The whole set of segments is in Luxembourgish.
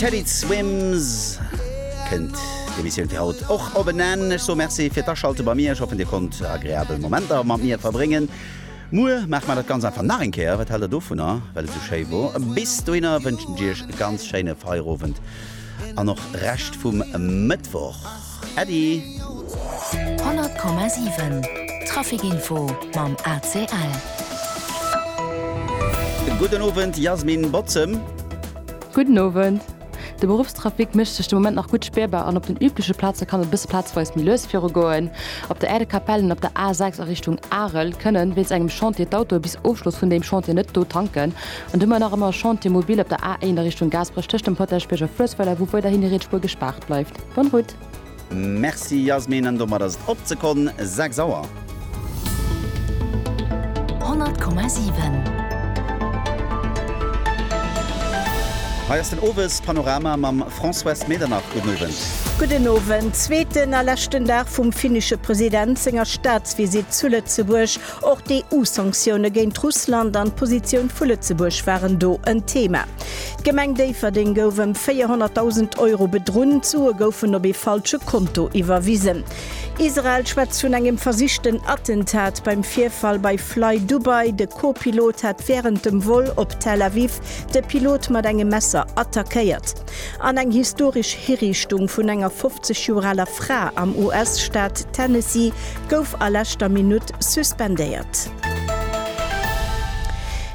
Teddy Swims kënnt d'Emissioun fir haut och op en Enn. Ech soe Merci fir d'Aschalte bei mir. Ech hoffen, Dir konnt agreabel Momenter mat mir verbréngen. Muer maache mer dat Ganzt einfach nach eng Kéier. Wat haalt Der dovunner, well et esou schéi wor? Bis dohinner wënschen ech Iech e ganz schéine Feierowend an och Rescht vum Mëttwoch. Äddi! 100,7 Trafic Info mam ACL. Gudden Owend Jasmin Botzem. Gudden Owend. De Beruffstrafic mécht sech de Moment nach gutt spierbar an op den übleche Plaze kann et e bësse plazweis méi lues viru goen. Op der Aire de Capelle an op der A6 a Richtung Arel kënnen wéinst engem Chantier d'Autoe bis Ofschloss vun deem Chantier net do tanken. An du mer nach ëmmer Chantier mobile op der A1 a Richtung Gaasperech tëscht dem Potaschbierg a Fluessweiler, wou weiderhin déi Rietspuer gespaart bleift. Bonne route! Merci Yasmin, an domat ass et op ze konn 6 Auer. 100,7. Hei ass den Owes Panorama mam Françoise Medernach. Gudden Owend. Gudden Owend. Zweeten a leschten Dag vum finnesche President senger Staatsvisitt zu Lëtzebuerg. Och d'EU-Sanktioune géint Russland an d'Positioun vu Lëtzebuerg waren do en Thema. D'Gemeng Déifferdeng gouf ëm 400.000 Euro bedrunn, d'Sue goufen op ee falsche Konto iwwerwisen. Israel schwätzt vun engem versichten Attentat beim Virfall bei FlyDubai, de Co-Pilot hat wärend dem Vol op Tel Aviv de Pilot mat engem Messer attackéiert. An eng historesch Hiriichtung vun enger 50 Joer aler Fra am US-Staat Tennessee gouf a leschter Minutt suspendéiert.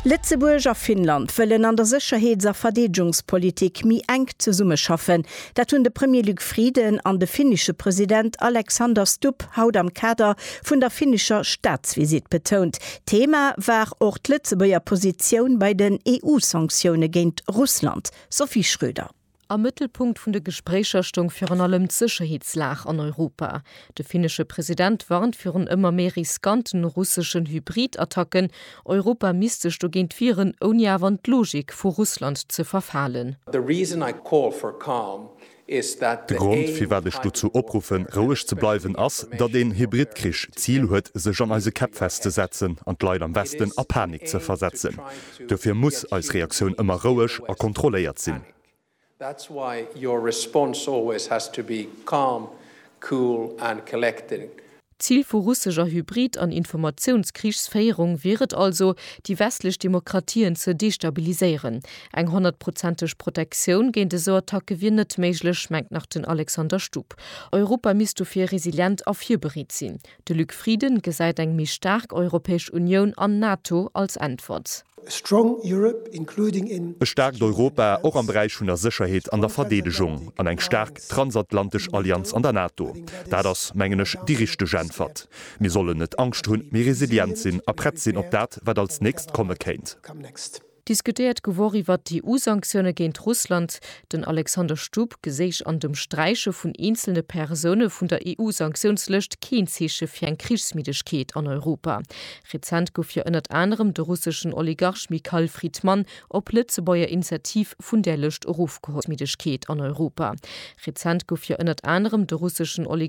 Lëtzebuerg a Finnland wëllen an der Sécherheets a Verdeedegungspolitik méi enk zesummeschaffen. Dat hunn de Premier Luc Frieden an de finnesche President Alexander Stubb haut am Kader vun der finnescher Staatsvisitt betount. Thema war och d'Lëtzebuerger Positioun bei den EU-Sanktioune géint Russland. Sophie Schröder. Am Mëttelpunkt vun de Gespréicher stoung virun allem d'Sécherheetslag an Europa. De finnesche President warnt virun ëmmer méi riskante russeschen Hybrid-Attacken. Europa misst sech dogéint wieren, ouni awer an d'Logik vu Russland ze verfalen. De Grond, firwat ech dozou opruffen, roueg ze bleiwen, ass, datt een Hybridkrich d'Zil huet, sech an eise Käpp festzesetzen an d'Leit am Westen a Panik ze versetzen. Dofir muss eis Reaktioun ëmmer roueg a kontrolléiert sinn. D'Zil vu russescher Hybrid an Informatiounskriegsféierung wier et also, déi westlech Demokratien ze destabiliséieren. Eng honnertprozenteg Protektioun géint esou Attacke wier net méiglech, mengt nach den Alexander Stupp. Europa misst dofir resilient a virbereet sinn. De Luc Frieden gesäit eng méi staark Europäesch Unioun an NATO als Äntwert. A strong Europe, including in. E staarkt Europa, och am Beräich vun der Sécherheet an der Verdeedegung, an eng staark transatlantesch Allianz an der NATO, dat ass, mengen ech, déi richteg Äntwert. Mir sollen net Angscht hunn, mee resilient sinn a prett sinn op dat, wat als nächst komme kéint. Diskutéiert gewor iwwert d'EU-Sanktioune géint Russland, den Alexander Stubb geséich an dem Sträiche vun eenzelne Persoune vun der EU-Sanktiounslëscht keen Zeeche fir eng Krichsmiddegkeet an Europa. Rezent gouf jo ënnert anerem de russeschen Oligarch Mikhail Fridman op Lëtzebuerger Initiativ vun där Lëscht erofgeholl. D'Schoulmiddegkeet an Europa Rezent gouf jo ënnert anerem de russeschen Oligarch.